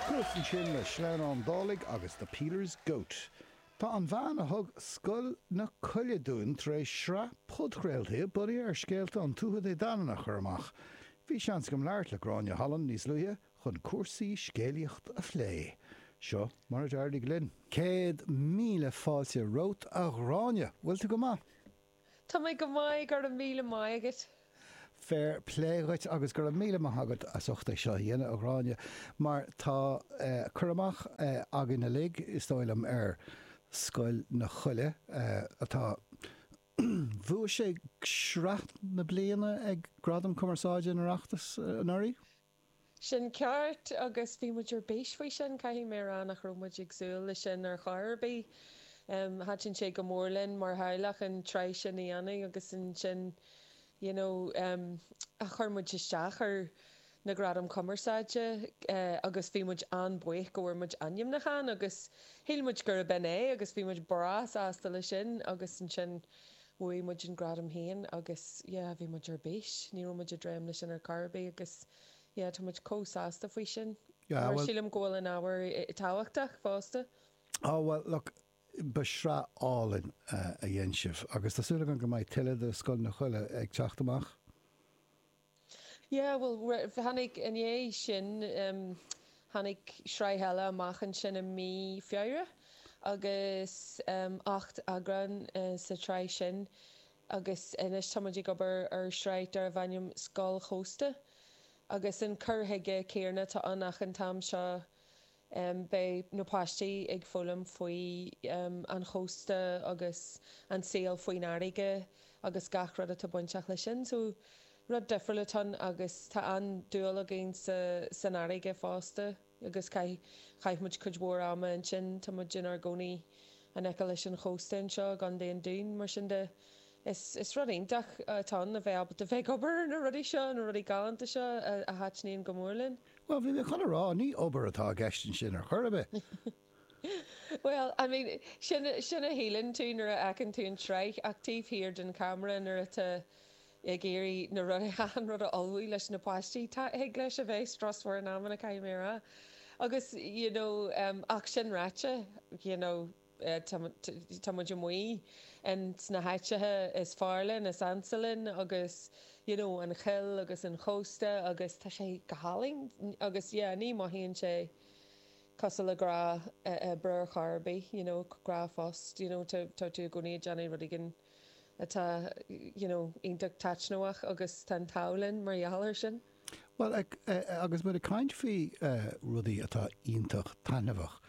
Cuas ansin le Sleamhnán Dálaigh agus The Peeler's Goat. Tá an bhean a thug Scoil na Coille dúinn tar éis sraith podchraoltaí bunaithe ar scéalta an Tuatha Dé Danann a chur amach. Bhí seans agam labhairt le Gráinne Holland níos luaithe chun cúrsaí scéalaíochta a phlé. Seo mar a d'éirigh linn. Céad míle fáilte romhat a Ghráinne! Bhfuil tú go maith? Tá mé go maith, go raibh míle maith agat. Féir plé dhuit agus go raibh míle maith agat as ucht é seo a dhéanamh, a Ghráinne, mar tá cur amach againn uilig, is dóigh liom, ar Scoil na Coille, atá, bhuaigh sé sraith na bliana ag Gradaim Cumarsáide an Oireachtais anuraidh? Sin ceart agus bhí muid ar bís faoi sin. Caithfidh mé a rá nach raibh muid ag súil leis sin ar chor ar bith. Thaitin sé go mór linn mar theaghlach an tsraith sin a dhéanamh agus ansin you know chuir muid isteach ar na Gradaim Chumarsáide agus bhí muid an-bhuíoch go bhfuair muid ainmniúchán agus shíl muid gurb in é agus bhí muid breá sásta leis sin agus ansin Bhuaigh muid an gradam féin agus, yeah, bhí muid ar bís. Ní raibh muid ag dréim leis sin ar chor ar bith agus, yeah, tá muid chomh sásta faoi sin. Yeah, well. Sílim go bhfuil an ábhar tábhachtach fosta. Oh, well, look, ba shraith álainn a dhein sibh agus tá súil agam go mbeidh tuilleadh de Scoil na Coille ag teacht amach. Yeah, bhuel, tháinig, i ndiaidh sin, tháinig sraith eile amach ansin i mí Feabhra agus ocht eagrán sa tsraith sin agus anois tá muid ag obair ar shraith darbh ainm Scoil Chósta agus an cur chuige céanna atá ann ach an t-am seo Beidh na páistí ag foghlaim faoi an chósta agus an saol faoin fharraige agus gach rud atá bainteach leis sin. So rud difriúil atá ann agus tá an-dúil againn san fharraige fosta agus chaith muid cuid mhór ama ansin. Tá muid inár gcónaí in aice leis an chósta anseo i gContae an Dúin, mar sin de is rud iontach atá ann a bheith ábalta bheith ag obair ar na rudaí seo, na rudaí galánta seo a thaitníonn go mór linn. Bhuel, bhí mé chun a rá, ní obair atá i gceist ansin ar chor ar bith! Bhuel, I mean, sin, sin a shíleann tú nuair a fheiceann tú an tsraith ach taobh thiar den cheamara nuair atá ag iarraidh na rud, achan rud a ullmhú leis na páistí, tá, thig leis a bheith strusmhar in amanna, caithfidh mé a rá. Agus, you know, ach sin ráite, you know, Tá muid amuigh in sna háiteacha is fearr linn, is ansa linn agus you know an choill agus an chósta agus tá sé go hálainn agus yeah ní mothaíonn sé cosúil le gnáthobair ar chor ar bith you know gnáthphost you know tá tú i gcónaí ag déanamh rud éigin atá you know iontach taitneamhach agus tá an t-ádh linn mar gheall air sin. Bhuel, agus muid ag caint faoi rudaí atá iontach taitneamhach,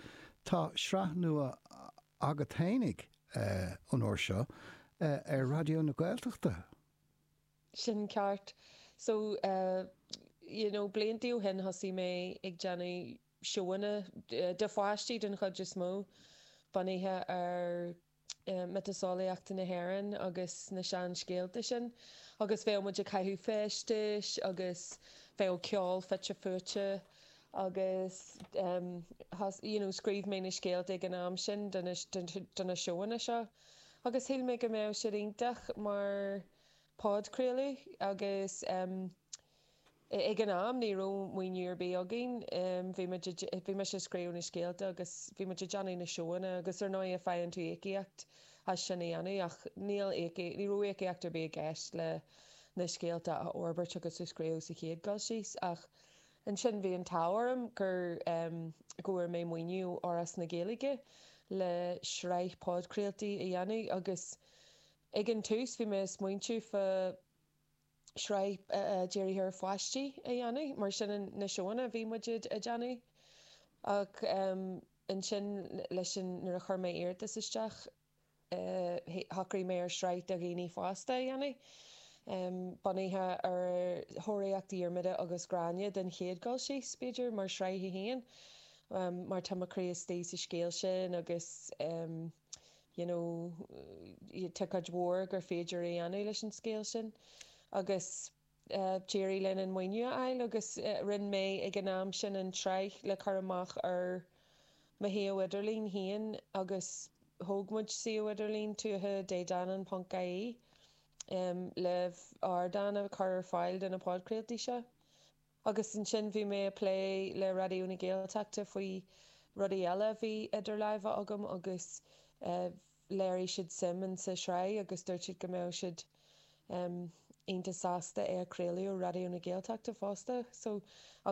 tá sraith nua agat fhéinig an uair seo ar Raidió na Gaeltachta. Sin ceart. So, you know, blianta ó shin thosaigh muid ag déanamh seónna, do pháistí den chuid is mó, bunaithe ar. mhiotaseolaíocht na hÉireann agus na seanscéalta sin agus bheadh muid ag caitheamh feistis agus bheadh ceol fite fuaite agus you know scríobh mé na scéalta ag an am sin do na seónna seo agus shíl mé go mbeadh siad iontach mar phodchraoladh agus. Ag an am, ní raibh maoiniú ar bith againn. Bhí muid, bhí mise ag scríobh na scéalta agus bhí muid ag déanamh na seónna agus ar ndóighe faigheann tú íocaíocht as sin a dhéanamh ach níl íocaíocht, ní raibh íocaíocht ar bith i gceist le na scéalta a fhorbairt agus a scríobh sa chéad dul síos ach ansin bhí an t-ádh orm gur, go bhfuair mé maoiniú ó Fhoras na Gaeilge le sraith podchraoltaí a dhéanamh agus ag an tús bhí mé ag smaointiú fá, shraith dírithe ar pháistí a dhéanamh, macasamhail na seónna a bhí muid a déanamh ach ansin leis an, nuair a chuir mé iarratas isteach shocraigh mé ar shraith do dhaoine fásta a dhéanamh bunaithe ar Thóraíocht Dhiarmada agus Ghráinne den chéad dul síos, b'fhéidir, mar shraith a haon mar tá mo chroí istigh sa scéal sin agus. you know tá cuid mhór gur féidir a dhéanamh leis an scéal sin agus d'éirigh linn an maoiniú a fháil agus rinne mé ag an am sin an tsraith le cur amach ar mo shuíomh idirlín féin agus thóg muid suíomh idirlín Tuatha Dé Danann ponc ie le ardán a chur ar fáil do na podchraoltaí seo. Agus ansin bhí mé a' plé le Raidió na Gaeltachta faoi rudaí eile a bhí idir láimhe agam agus léirigh siad suim in sa tsraith agus dúirt siad go mbeadh siad ionta sásta é a chraoladh ar Raidió na Gaeltachta fosta. So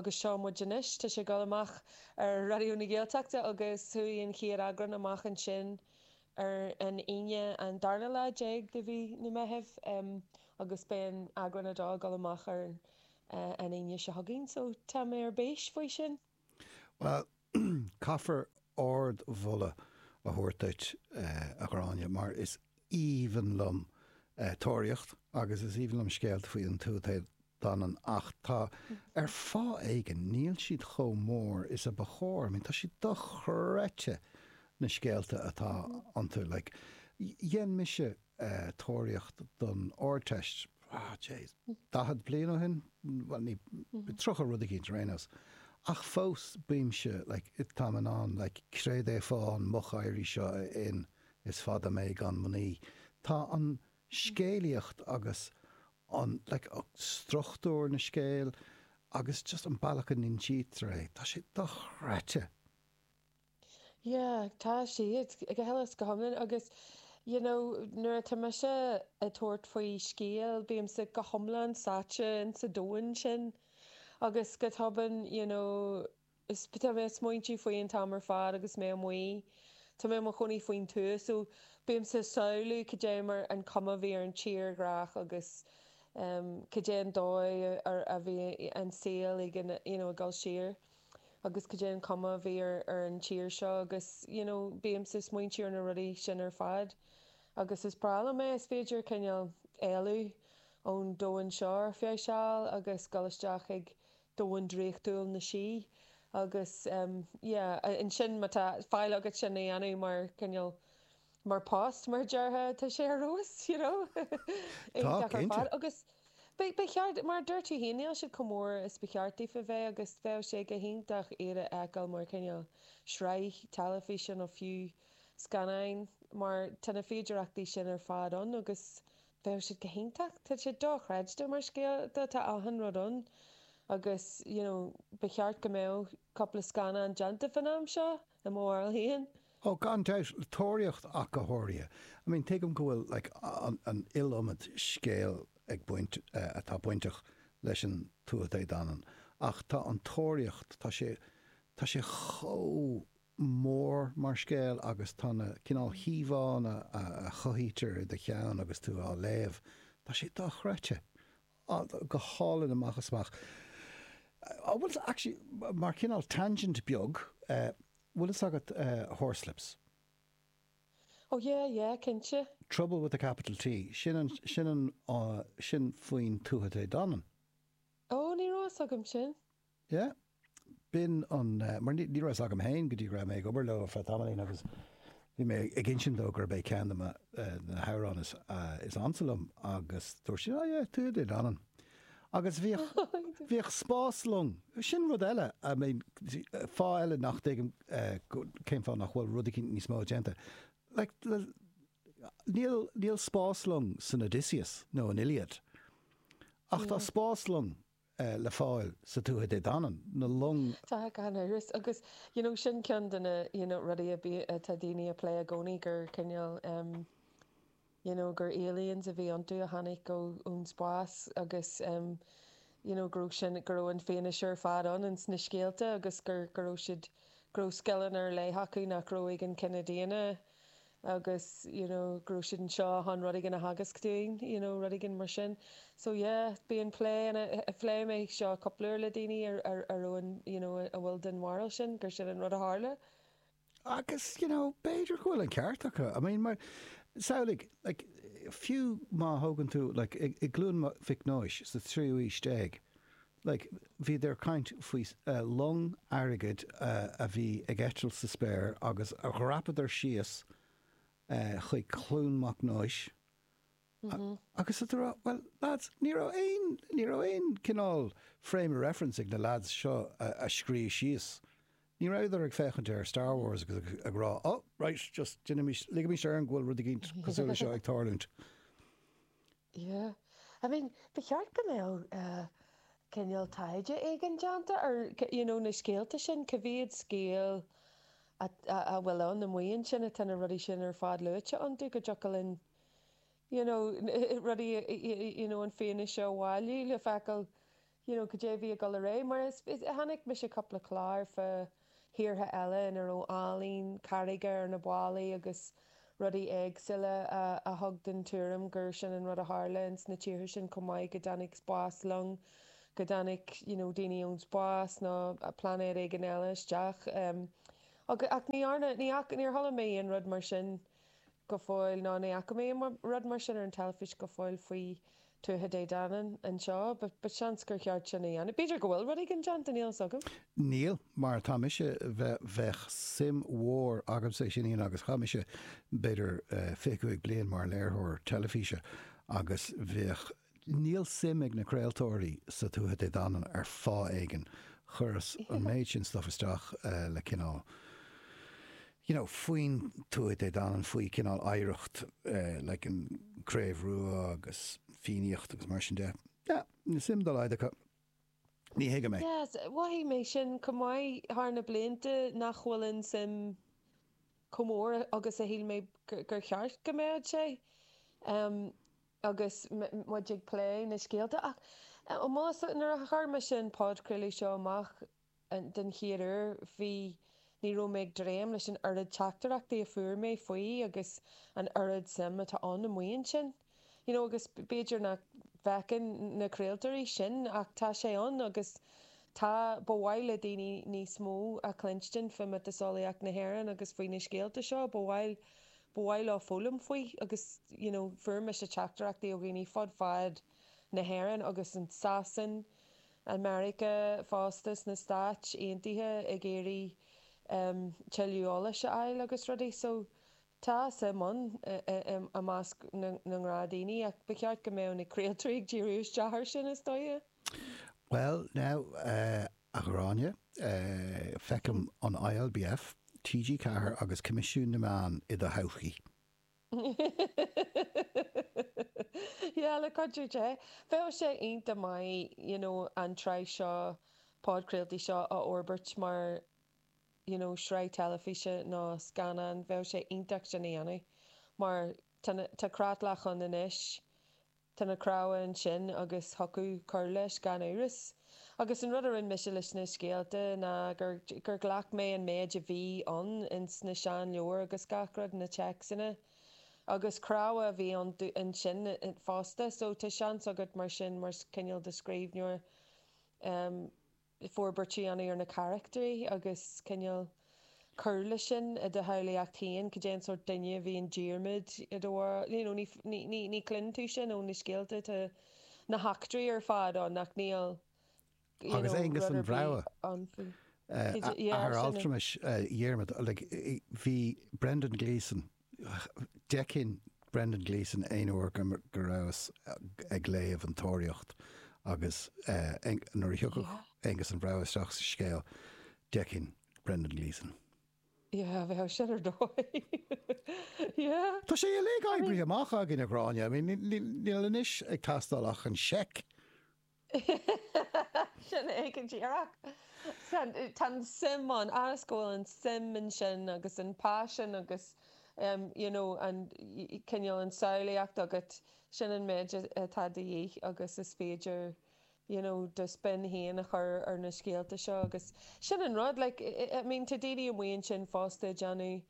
agus seo muid anois, tá sé goil amach ar Raidió na Gaeltachta agus chuaigh an chéad eagrán amach ansin ar an Aoine an darna lá déag de mhí an Mheithimh agus beidh eagrán a dó a' goil amach ar an an Aoine seo chugainn so tá mé ar bís faoi sin! Bhuel, caithfear ard-mholadh a thabhairt duit, a Ghráinne, mar is aoibhinn liom tóraíocht agus is aoibhinn liom scéalta faoi na Tuatha Dé Danann ach tá, ar fáth éigin, níl siad chomh mór is a ba chóir. I mean, tá siad dochreidte, na scéalta atá iontu. Like, dhein mise. tóraíocht don Ardteist, daichead bliain ó shin, bhuel, ní, tríocha rud eicínt ar aon nós, ach fós, bímse, like, táim in ann, like, créad é fáth an mhochéirí seo, a Fhinn, is fada mé gan mnaoi. Tá an scéalaíocht agus an, like, struchtúr na scéal agus just an bealach a n-insítear é, tá sé dochreidte. Yeah, tá siad, go huile is go hiomlán agus you know nuair atá mise ag tabhairt faoi scéal bímse go hiomlán sáite ins an domhan sin agus go tobann you know tá mé ag smaointiú faoi an t-am ar fad agus mé amuigh, tá mé i mo chónaí faoin tuath so bímse ag samhlú cad é mar an cuma a bhí ar an tírdhreach agus em cad é an dóigh a bhí an saol ag an you know ag dul siar. agus cad é an cuma a bhí ar an tír seo agus you know bímse ag smaointiú ar na rudaí sin ar fad agus is breá liom é is féidir cineál éalú ón domhan seo ar feadh seal agus dul isteach chuig domhan draíochtúil na sí agus em yeah and sure má tá faill agat sin a dhéanamh mar cineál mar post mar déarfá tá sé ar fheabhas you know tá cinnte agus beidh ba cheart mar dúirt tú féin níl siad chomh mór is ba cheart daofa a bheith agus bheadh sé go hiontach iad a fheiceáil mar chineál sraith teilifíse nó fiú scannáin mar tá na féidireachtaí sin ar fad ann agus bheadh siad go hiontach tá sé do-chreidte mar scéalta tá achan rud ann agus you know ba cheart go mbeadh cúpla scannán déanta fán am seo i mo bharúil féin. Oh, gan dabht, an Tóraíocht ach go háirithe. I mean, tuigim go bhfuil like an iliomad scéal ag baint eh atá bainteach leis an Tuatha Dé Danann ach tá an tóraíocht, tá sé, tá sé chomh mór mar scéal agus tá na cineál íomhánna a chothaítear i do cheann agus tú á léamh, tá sé dochreidte. go hálainn amach is amach. An bhfuil 's actually, mar cineál tangent beag, bhfuil fhios agat Horslips? Oh yeah, yeah, cinnte. Trouble with a capital T, sin an, sin an, sin faoin Tuatha Dé Danann. Oh, ní raibh fhios agam sin. Yeah. B'in an, eh, mar ní, ní raibh fhios agam féin go dtí go raibh mé ag obair leo ar feadh tamaillín agus bhí mé ag insint dó gurb é ceann de mo, eh, na hamhráin is, eh, is ansa liom agus dúirt sé, oh yeah, Tuatha Dé Danann. Agus bhíodh, bhíodh spás long, sin rud eile, I mean, eh, fáth eile nach dtuigim, eh, go- cén fáth nach bhfuil rud eicínt níos mó déanta. Like, le- níl, níl spás long san Odysseus nó an Iliad ach tá spás long le fáil sna Tuatha Dé Danann, na long. Tá gan amhras, agus you know sin ceann de na you know rudaí a bíonn atá daoine ag plé i gcónaí gur cineál em you know gur aliens a bhí iontu a tháinig ó ón spás agus em you know go raibh sin go raibh an fianaise ar fad ann in sna scéalta agus gur go raibh siad go raibh scileanna ar leith acu nach raibh ag an chine daonna agus you know go raibh siad anseo chun rud éigin a theagasc dúinn you know rud éigin mar sin so yeah bíonn plé phléigh mé seo cúpla uair le daoine ar ar ar you know a bhfuil den bharúil sin gur sin an rud a tharla. agus you know b'fhéidir go bhfuil an ceart acu I mean mar samhlaigh like fiú má thógann tú like i gCluain Mhic Nóis sa tríú aois déag Like, bhíodar ag caint faoi long airgid a bhí ag eitilt sa spéir agus dhreapadar síos chuig Cluain Mhic Nóis agus tú ag rá, Well, lads, ní raibh aon, ní raibh aon cineál frame of reference ag na lads seo a scríobh síos é. Ní rabhadar ag féachaint ar Star Wars agus ag rá, Oh, right, just, deinimís, ligimis orainn go bhfuil rud éigin cosúil leis seo ag tarlúint. Yeah, I mean, ba cheart go mbeadh cineál taighde éigin déanta ar, you know, na scéalta sin, cá mhéad scéal a bhfuil ann amuigh ansin atá na rudaí sin ar fad luaite iontu, go dtiocfadh linn, you know, rudaí, you know, an fianaise a bhailiú le feiceáil. you know cad é a bhí ag dul ar aghaidh mar is is chonaic mise cúpla clár fá thíortha eile ina raibh ealaín carraige ar na ballaí agus rudaí éagsúla a a thug den tuairim gur sin an rud a tharla ins na tíortha sin chomh maith go dtáinig spáslong go dtáinig you know daoine ón spás nó pláinéad éigin eile isteach em agus ach ní dhearna ní fhaca níor chuala mé aon rud mar sin go fóill ná ní fhaca mé rud mar sin ar an teilifís go fóill faoi Tuatha Dé Danann anseo. Ba seans gur cheart sin a dhéanamh. B'fhéidir go bhfuil rud éigin déanta, níl fhios agam. Níl, mar tá mise, bheadh suim mhór agamsa, ansin Ian, agus chaith mise b'fhéidir 25 bliain mar léiritheoir teilifíse agus bheadh Níl suim ag na craoltóirí sna Tuatha Dé Danann ar fáth éigin. Chuireas an méid sin stuff isteach le cineál you know faoin Tuatha Dé Danann, faoi cineál oidhreacht like an Craobh Rua agus Fiannaíocht agus mar sin de. Yeah, níl suim dá laghad acu. Ní thuigim é. Yes, mhothaigh mé sin chomh maith thar na blianta nach bhfuil an suim chomh mór agus a shíl mé gur cheart go mbeadh sé. agus muid ag plé na scéalta ach más ea, nuair a chuir mise an podchraoladh seo amach den chéad uair bhí, ní raibh mé ag dréim leis an oiread teachtaireachtaí a fuair mé faoi agus an oiread suim atá ann amuigh ansin. You know agus b'fhéidir nach bhfeiceann na craoltóirí sin ach tá sé ann agus tá, ba mhaith le daoine níos mó a chluinstin faoi mhiotaseolaíocht na hÉireann agus faoi na scéalta seo, ba mhaith, Ba mhaith leo foghlaim faoi agus you know fuair mise teachtaireachtaí ó dhaoine fud fad na hÉireann agus in Sasain, i Meiriceá fosta, sna Stáit Aontaithe ag iarraidh em tuilleadh eolais a fháil agus rudaí so tá suim ann i measc na ngnáthdhaoine ach ba cheart go mbeadh na craoltóirí ag díriú isteach air sin is dóighe. Bhuel now eh. A Ghráinne, feicim an ILBF, TG4 agus Coimisiún na Meán i do thodhchaí. Sea, le cuidiú Dé. Bheadh sé iontach maith you know an tsraith seo, podchraoltaí seo a fhorbairt mar you know sraith teilifíse nó scannán, bheadh sé iontach sin a dhéanamh mar tá na, tá creatlach ann anois Tá na cnámha ansin agus thiocfadh cur leis gan amhras. Agus an rud a rinne mise leis na scéalta ná gur, gur ghlac mé an méid a bhí ann ins na seanleabhair agus gach rud, na téacsanna. Agus cnámha a bhí iontu ansin fosta so tá seans agat mar sin mar chineál de scríbhneoir, eh, le forbairt a dhéanamh ar na carachtair agus cineál cur leis sin i do shamhlaíocht féin, cad é an sórt duine a bhí i nDiarmaid i do bharúil, you know ní chluineann tú sin ó na scéalta, tá na heachtraí ar fad ann ach níl you know rud ar bith ann faoi. Cad é, yeah, sin an. Agus Aonghus an Bhrogha, athair altramais Dhiarmaid, like bhí Brendan Gleeson, D'fheicinn Brendan Gleeson aon uair go rabhas ag léamh an Tóraíocht agus nuair a thiocfadh Aonghus an Bhrogha isteach sa scéal, d'fheicinn Brendan Gleeson. Yeah, bheadh sin ar dóigh, yeah. Tá sé uilig oibrithe amach againn, a Ghráinne. Níl anois ag teastáil ach an seic. Sin é go díreach. Tá an suim ann, a fhad is go bhfuil an suim ansin agus an paisean agus you know an cineál an samhlaíocht agat, sin an méid atá de dhíth agus is féidir you know do spin héin a chur ar na scéalta seo agus sin an rud, like I mean tá daoine amuigh ansin fosta ag déanamh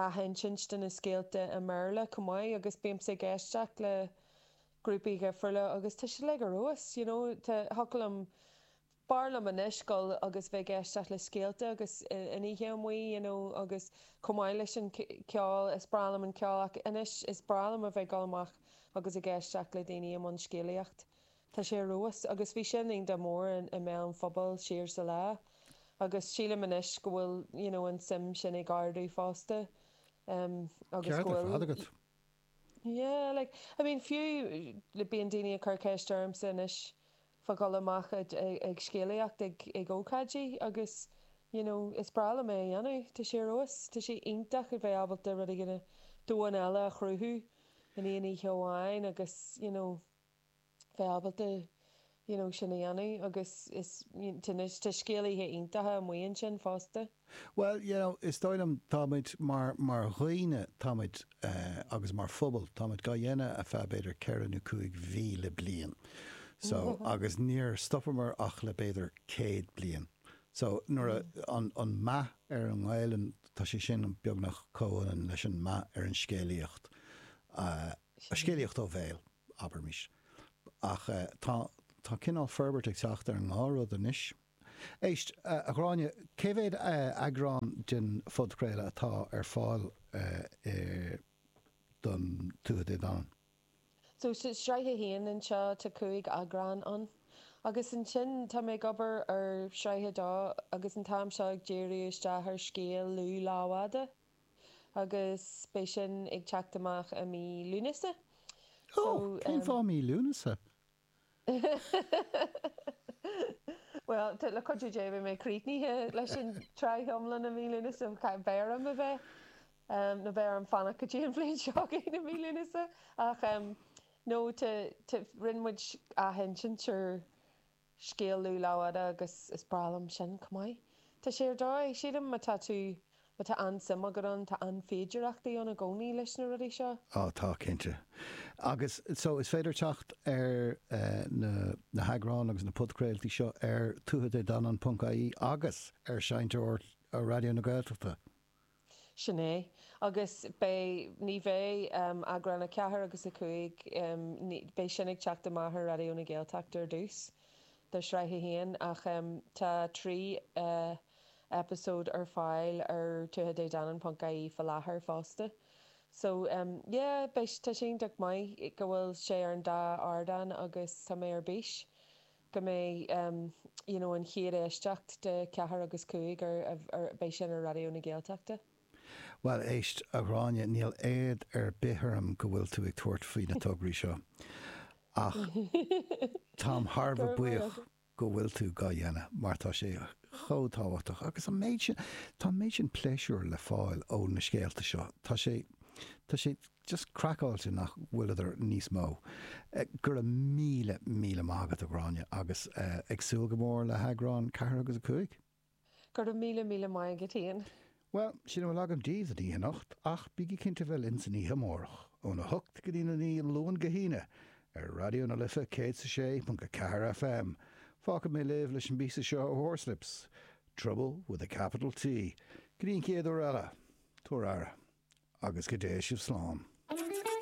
athinsint de na scéalta i mBéarla chomh maith agus bímse ag éisteacht le grúpaí dhifriúla agus tá siad like ar fheabhas you know tá thiocfadh liom b'fhearr liom anois dhul agus bheith ag éisteacht le scéalta agus an oíche amuigh you know agus chomh maith leis an ceol is breá liom an ceol ach anois is breá liom a bheith ag dul amach agus ag éisteacht le daoine i mbun scéalaíocht tá sé ar fheabhas agus bhí sin an-mhór i mbéal an phobail siar sa lá agus sílim anois go bhfuil you know an suim sin ag ardú fosta agus go bhfuil. Yeah, like, I mean, fiú, like, bíonn daoine ag cur ceist ormsa anois fá dhul amach ag scéalaíocht ag ócáidí agus, you know, is breá liom é a dhéanamh. Tá sé ar fheabhas. Tá sé iontach a bheith ábalta rud éigin, domhan eile a chruthú in aon oíche amháin agus, you know, bheith ábalta you know sin a dhéanamh agus is anois tá scéalaithe iontacha amuigh ansin fosta. Bhuel you know is dóigh liom tá muid mar mar dhaoine tá muid agus mar phobal tá muid gá dhéanamh ar feadh b'fhéidir ceithre nó cúig mhíle bliain so agus níor stopamar ach le b'fhéidir céad bliain so nuair a an meath ar an nGaelainn tá sé sin beagnach comhionann leis an meath ar an scéalaíocht a scéalaíocht ó bhéal. abraimis. Ach tá, tá cineál forbairt ag teacht ar an ndá rud anois. Éist, a Ghráinne, cé mhéad eagrán den phodchraoladh atá ar fáil don Tuatha Dé Danann? So, sraith a haon anseo, tá cúig eagrán ann. Agus ansin, tá mé ag obair ar shraith a dó agus an t-am seo ag díriú isteach ar scéal Lugh Lámhfhada. agus beidh sin ag teacht amach i mí Lúnasa. So, Oh, cén em. fáth mí Lúnasa? Bhuel, tá, le cuidiú Dé, beidh mé críochnaithe leis an tsraith iomlán i mí Lúnasa, cha, b'fhearr liom a bheith, em, nó b'fhearr liom fanacht go dtí an bhliain seo chugainn i mí Lúnasa ach, em, no, tá, tá, rinne muid athinsint ar, Scéal Lugh Lámhfhada agus is breá liom sin, chomh maith. Tá sé ar dóigh, sílim, má tá tú, má tá an-suim agat ann, tá féidearthachtaí ann i gcónaí leis na rudaí seo. Á, tá, cinnte. Agus so, is féidir teacht ar na heagráin agus na podchraoltaí seo ar tuatha Dé Danann ponc ie agus ar Seinnteoir Raidió na Gaeltachta. Sin é. Agus beidh, ní bheidh, eagrán 4 agus 5, ní, beidh sin ag teacht amach ar Raidió na Gaeltachta ar dtús, do shraith a haon, ach tá trí eipeasóid ar fáil ar Tuatha Dé Danann ponc ie fá láthair fosta. So, yeah, beidh, tá sé iontach maith go bhfuil sé ar an dá ardán agus tá mé ar bís. go mbeidh you know an chéad éisteacht de ceathair agus cúig ar, ar beidh sin ar Raidió na Gaeltachta. Bhuel, éist, a Ghráinne, níl éad ar bith orm go bhfuil tú ag tabhairt faoi na tograí seo, ach táim thar bheith buíoch go bhfuil tú dhá dhéanamh mar tá sé chomh tábhachtach agus an méid sin, tá an méid sin pléisiúir le fáil ó na scéalta seo, tá sé, tá sé. just craiceáilte nach bhfuileadar níos mó. Go raibh míle, míle maith agat, a Ghráinne, agus ag súil go mór le heagrán 4 agus 5. Go raibh míle, míle maith agat, Ian. Bhuel, sin a bhfuil agam daoibh don oíche anocht, ach bígí cinnte bheith linn san oíche amárach, óna hocht go dtína naoi, Luan go hAoine, ar Raidió na Life 106.4 FM. Fágfaidh mé libh leis an bpíosa seo ó Horslips, Trouble with a capital T, go dtí an chéad uair eile, tugaigí aire, agus go dté sibh slán.